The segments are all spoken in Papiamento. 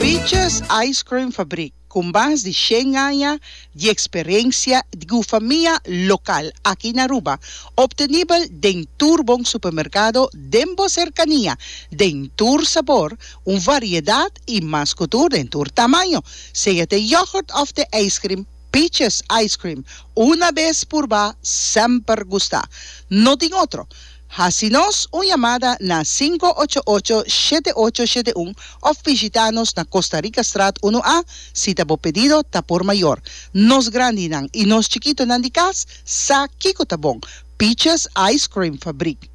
Peaches Ice Cream Fabrik, ku mas di shen aña di eksperensia di gufamia lokal aki na Aruba, optenibel den tur bon supermerkado den bo serkania, den tur sabor, un variedat i mas ku tur den tur tamaño, sea te yogurt òf te ijskrim. Peaches ice cream una bes purba semper gusta no tin otro hasi nos un yamada na sinku ocho ocho shete ocho shete un of bishita nos na Costa Rica straat unu A si ta bo pedido ta por mayor nos grandi nan y nos chikito nan di cas sa kiko ta bon Peaches ice cream fabrik.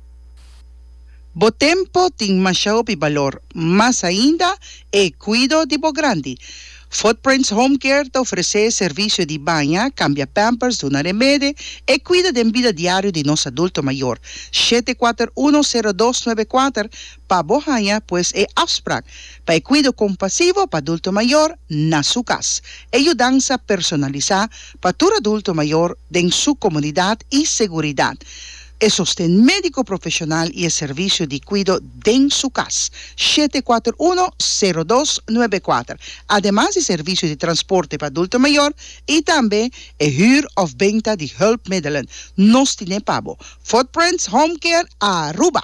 Bo tempo tin masha hopi balor, mas ainda e cuido di bo grandi. Footprints Home Care ta ofrece servicio di baña, cambia pampers, duna remede, e cuido den bida diario di nos adulto mayor. Shete kuater uno sero dos nuebe kuater pa bo haña pues e afsprak pa e cuido compasivo pa adulto mayor na su cas. E yudansa personalisa pa tur adulto mayor den su comunidad y seguridad. E sosten médiko profeshonal i e servisio di kuido den su kas, shete kuater uno, sero dos, nuebe kuater, ademas di servisio di transporte pa adulto mayor i tambe e hür òf benta di hùlpmiddelen, nos tin'é pa bo, Footprints Home Care Aruba.